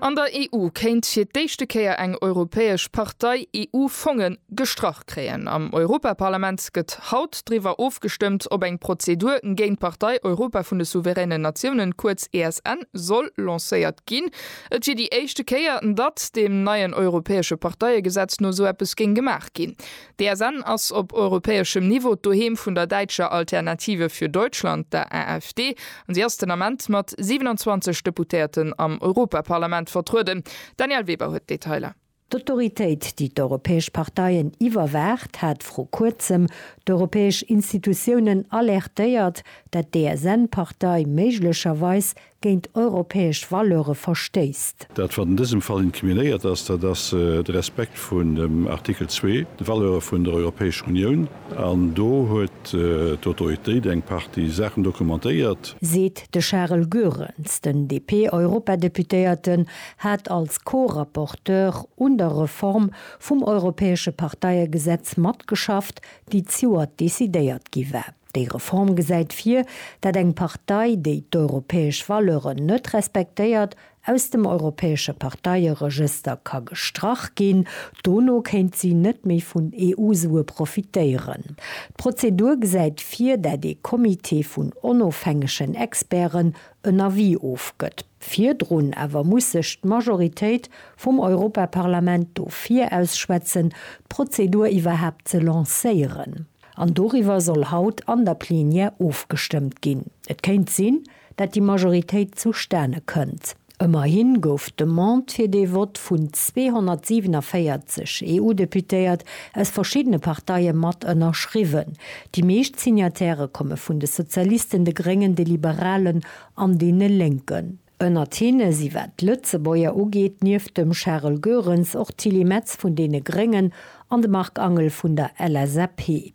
An der EU kéint fir d'éischte Kéier eng europäesch Partei EU-Fonge gestrach kréien. Am Europaparlament gëtt haut driwwer ofgestëmmt, ob eng Prozedur géint d'Partei Europa vun de souveränen Natiounen, kuerz ESN, soll lancéiert ginn. Et wier déi éischte Kéier, datt deem neien europäesche Parteiegesetz no sou eppes géing gemaach ginn. D'ESN ass op europäeschem Niveau d'Doheem vun der däitscher Alternative für Deutschland, der AfD, an si ass den Ament mat 27 Deputéierten am Europaparlament vertrueden. D'Danièle Weber huet d'Detailer. D'Autoritéit, déi d'europäesch Parteien iwwerwaacht, hat vru Kuerzem d'europäesch Institutiounen alertéiert, dat d'ESN-Partei méiglecherweis géint europäesch Valeure verstéisst. Dat, wat an dësem Fall incriminéiert ass, dat ass de Respekt vun dem Artikel zwee, de Valeure vun der Europäescher Unioun. An do huet d'Autoritéit eng Partie Saachen dokumentéiert. Seet de Charel Goerens. Den DP-Europadeputéierte hat als Co-Rapporteur un der Reform vum europäesche Parteiegesetz matgeschafft, déi d'Joer decidéiert gi war. Déi Reform gesäit vir, dat eng Partei, déi d'europäesch Valeuren net respektéiert, aus dem europäesche Parteieregëster ka gestrach ginn. Dono kéint si net méi vun EU-Sue profitéieren. D'Prozedur gesäit vir, dat ee Comité vun onofhängegen Experten en Avis ofgëtt. Virdrun awer muss sech d'Majoritéit vum Europaparlament dofir ausschwätzen, d'Prozedur iwwerhaapt ze lancéieren. An doriwwer soll haut an der Plenière ofgestëmmt ginn. Et kéint sinn, dat déi Majoritéit zustane kënnt. Ëmmerhi gouf d'Demande fir dee Vott vun 247 EU-Deputéiert aus verschiddene Parteie mat ënnerschriwwen. Déi meescht Signatairë komme vun de Sozialisten, de Gréngen, de Liberalen an deene Lénken. Ënnert hinne si wat d'Lëtzebuerger ugeet nieft dem Charel Goerens och d'Tilly Metz vun deene Gréngen an de Marc Angel vun der LSAP.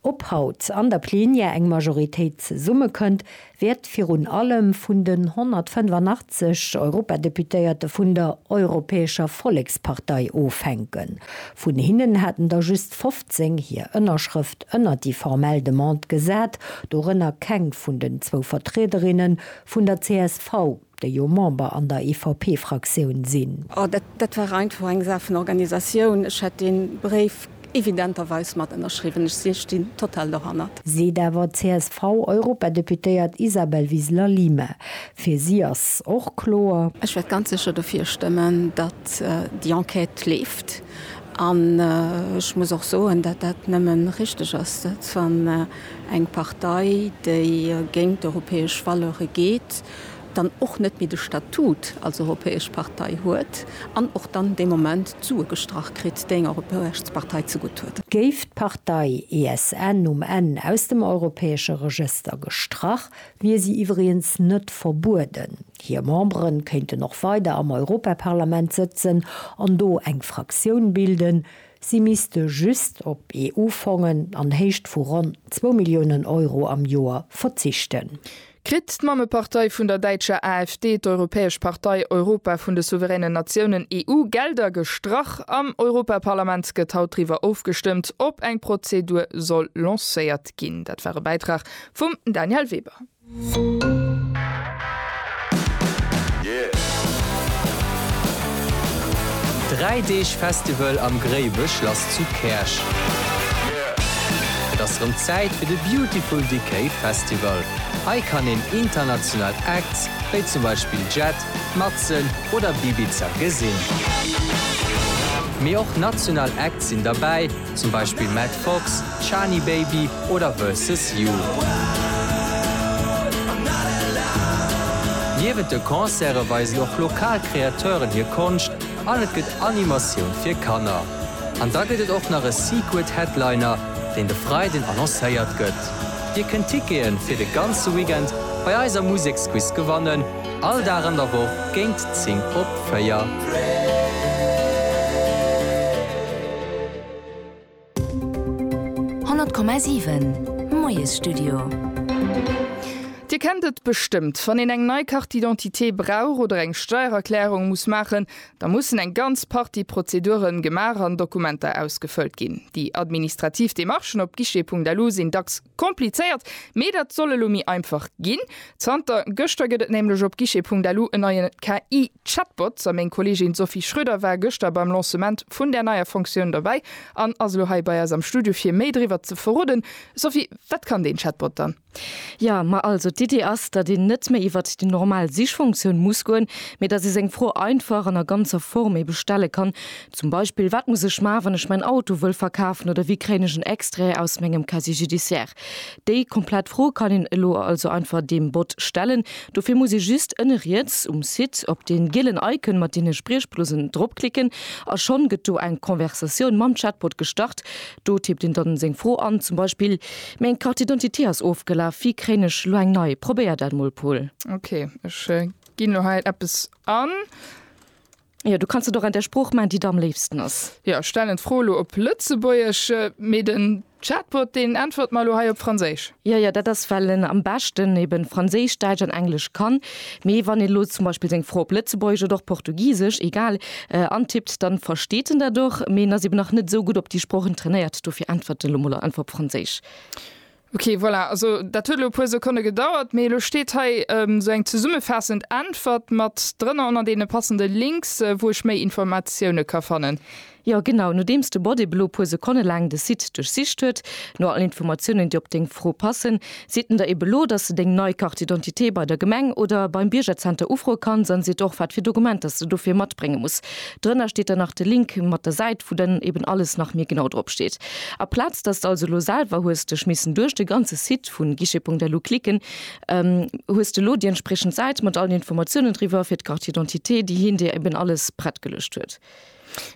Ob haut an der Plenière eng Majoritéit zesummekënnt, wäert virun allem vun den 185 Europadeputéierte vun der Europäescher Vollekspartei ofhänken. Vun hinnen haten der just 15 hir Ënnerschrëft ënnert déi formell Demande gesat, dorënner keng vun den zwou Vertriederinne Vun der csv, déi jo Member an der EVP-Fraktioun sinn. Oh, dat, dat war einfach eng Saach vun Organisatioun. Ech hätt dee Bréif evidenterweis mat ënnerschriwwen. Ech si, stinn total dohannert. Seet awer d'CSV-Europadeputéiert Isabel Wiseler Lima. Fir si ass och kloer. Ech wäert ganz sécher dofir stëmmen, datt déi Enquête leeft. An ech muss och soen, datt dat nëmmen richteg ass, datt wann. Eng Partei, déi géint europäesch Valeure geet, dann och net méi de Statut als europäesch Partei huet an och dann dee Moment d'Sue gestrach kritt, déi enger europäesch Partei zegutt huet. Géif d'Partei ESN um Enn aus dem europäesche Regëster gestrach, wier si iwwregens net verbueden. Hir Membere kéinten och weider am Europaparlament sëtzen an do eng Fraktioun bilden. Si misste just op EU-Fongen an Héicht vu ronn zwou Milliounen Euro am Joer verzichten. Kritt d'Mammepartei vun der däitscher AfD, d'Europäesch Partei Europa vun de souveränen Natiounen, EU, Gelder gestrach? Am Europaparlament gëtt haut driwwer ofgestëmmt, ob eng Prozedur soll lancéiert ginn. Dat war e Bäitrag vum Daniel Weber. Dräi Deeg Festival am Gréiweschlass zu Käerch. Et ass rëm Zäit fir de Beautiful Decay Festival. Hei kann een international Acts, wéi zum Beispill Jet, Matzen oder Bibiza gesinn. Mee och national Acts sinn derbäi. zum Beispill Matt Fox, Chani Baby oder Versus You. Niewent de Concerte weisen och lokal Kreateuren hir Konscht an et gëtt Animatioun fir Kanner. An da gëtt et och nach e Secret Headliner, deen de Freiden annoncéiert gëtt. Dir kënnt Tickete fir de ganze Weekend bei eiser Museksquiz gewannen. All Dag an der Woch géint 10 op 4. Honnert Komma siwen, Moiesstudio. Dir kennt et bestëmmt, wann een eng nei Carte d'identité brauch oder eng Steiererklärung muss maachen, da mussen eng ganz Partie Prozeduren gemaach an Dokumenter ausgefëllt ginn. Déi administrativ Demarchen op guichet.lu sinn dacks Komplizéiert, mee dat soll elo méi einfach ginn. Zanter gëschter gëtt et nämlech op guichet.lu en neie KI-Chatbot. A meng Kolleegin Sophie Schroeder war gëschter beim Lancement vun där neier Fonctioun dobäi an ass elo hei bei eis am Studio fir méi driwwer ze verroden. Sophie, wat kann deen Chatbot dann? Jo, ma also d'Iddi ass, datt een net méi iwwert déi normal Sichfunktioun muss goen, mee datt ee seng Fro einfach an a ganzer Form ebe stelle kann. Zum Beispill, Wat muss ech man, wann ech mäin Auto wëll verkafen oder wéi kréien ech en Extrait aus mengem Casier judiciaire? Déi komplett Fro kann een elo also einfach deem Bot stellen. Dofir muss ee just ënne riets um Site op dee gielen Icon mat deene Spriechblusen dropklicken a schonn gëtt do eng Konversatioun mam Chatbot gestart. Do tippt een dann seng Fro an, zum Beispill, Meng Carte d'identité ass ofgelaf, wéi kréien ech elo eng nei? Probéier dat mol, Paul. Ok, ech ginn elo hei eppes an. Jo, du kanns et och an der Sprooch man, déi der am léifsten ass. Jo, stellen d'Fro elo op Lëtzebuergesch, mee den Chatbot, deen äntwert mer elo hei op Franséisch. Jo, jo, dat ass, well en am beschten eben Franséisch, Däitsch an Englesch kann. Mee wann een elo zum Beispill seng Fro op Lëtzebuergesch oder och Portugisesch, egal, antippt, dann versteet en dat och. Mee en ass eben nach net esou gutt op déi Sproochen trainéiert, dofir äntwert en elo mol einfach op Franséisch. Ok, voilà, also dat huet elo e puer Sekonne gedauert, mee elo steet hei esou eng zesummefaassend Äntwert mat drënner ënner deene passende Links, wou ech méi Informatioune ka fannen. Jo, genau. Nodeems de Bot ebe lo e puer Sekonne laang de Site duerchsicht huet no allen Informatiounen, déi op deng Fro passen, seet en der ebe lo, dass de deng nei Carte d'identité bei der Gemeng oder beim Biergerzenter ufroe kanns an seet och, wat fir Dokumenter s de dofir matbrénge muss. Drënner steet dann nach de Link mat der Säit, wou dann eben alles nach méi genau drop steet. A Plaz dass de also elo selwer hues dech missen duerch de ganze Site vu Guichet.lu klicken, hues de elo déi entspriechend Säit mat allen Informatiounen driwwer fir d'Carte d'identité, déi hien dir eben alles prett geluecht huet.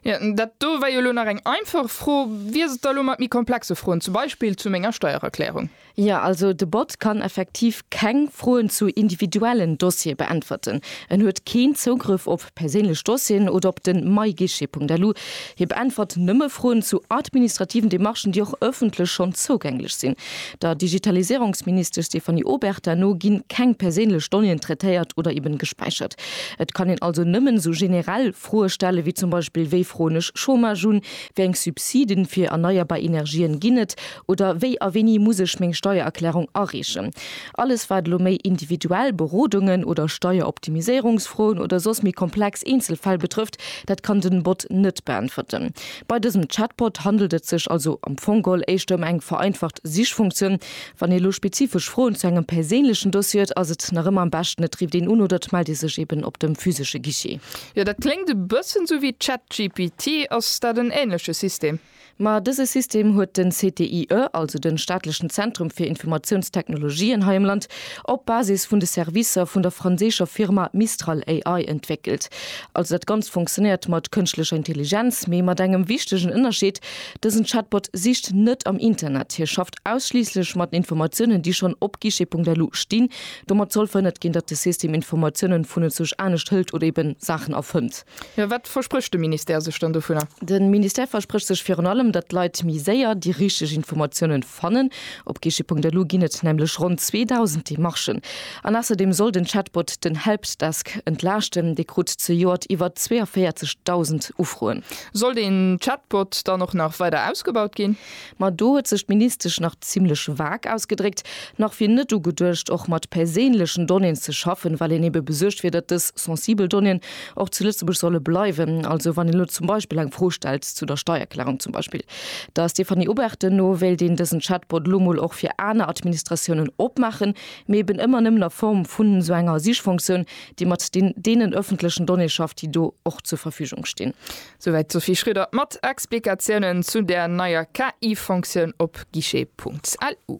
Jo, dat do war jo elo nach eng einfach Fro. Wéi ass et da elo mat méi komplexe Froen, zum Beispill zu menger Steiererklärung? Jo, also de Bot kann effektiv keng Froen zu individuellen Dossiere beäntwerten. En huet keen Zougrëff op perséinlech Dossieren oder op den myguichet.lu. Hie beäntwert nëmme Froen zu administrativen Demarchen, déi och ëffentlech schonn zougänglech sinn. Der Digitaliséierungsministesch Stéphanie Obertin no ginn keng perséinlech Donnéeën traitéiert oder eben gespäichert. Et kann een also nëmmen esou generell. Froe stellen, wéi zum Beispill, Wéi froen ech Chômage un? Wéi eng Subsiden fir erneierbar Energien ginn et? Oder wéi a wéini muss ech meng Steiererklärung areechen? Alles wat elo méi individuell Berodungen oder Steieroptimiséierungsfroen oder soss méi komplex Eenzelfäll betrëfft, dat kann den Bot net beäntwerten. Bei dësem Chatbot handelt et sech also am Fong geholl éischter ëm eng vereinfacht Sichfunktioun, Wann ee lo spezifesch Froen zu engem perséinlechen Dossier huet, ass et nach ëmmer am beschten et rifft een un oder et mellt ee sech eben op dem physesche Guichet. Jo, dat kléngt e bëssen sou wéi ChatGPT. Ass dat en änleche System? Ma dëse System huet den CTIE, also den staatlechen Zentrum fir Informatiounstechnologien hei am Land, op Basis vun de Servicer vun der franséischer Firma Mistral AI entwéckelt. Also dat Ganzt funktionéiert mat kënschtlecher Intelligenz, mee mat engem wichtegen Ënnerscheed, dësen Chatbot sicht net am Internet, hie schafft. ausschliisslech mat Informatiounen, déi schonn op guichet.lu stinn. Domat soll verhënnert ginn, datt de System Informatiounen vunenzwuersch anescht hëlt oder ebe Saachen erfënnt. Mä wat versprécht de Ministère sech dann dovunner? De Ministère versprécht sech virun allem, datt d'Leit méi séier déi richteg Informatiounen fannen. Op guichet.lu ginn et nämlech ronn 2.000 Demarchen. An ausserdeem soll den Chatbot den Helpdesk entlaaschten. Dee krut zejoert iwwer 42.000 Ufroen. Soll den Chatbot dann och nach weider ausgebaut ginn? Ma do huet sech d'Ministesch nach zimlech vag ausgedréckt. Nach wier net ugeduecht, och mat perséinlechen Donnéeën ze schaffen, well een ebe besuergt wier, datt dës sensibel Donnéeën och zu Lëtzebuerg solle bleiwen. Also wann een elo zum Beispill eng Fro stellt zu der Steierklärung zum Beispill. Der Stéphanie Obertin no wéilt een dësen Chatbot elo mol och fir aner Administratiounen opmaachen, mee eben ëmmer nëmmen a Form vun esou enger Sichfonktioun, déi mat deenen ëffentlechen Donnéeë schafft, déi do och zur Verfügung stinn. Souwäit d'Sophie Schröder mat Explikatiounen zu där neier KI-Fonctioun op guichet.lu.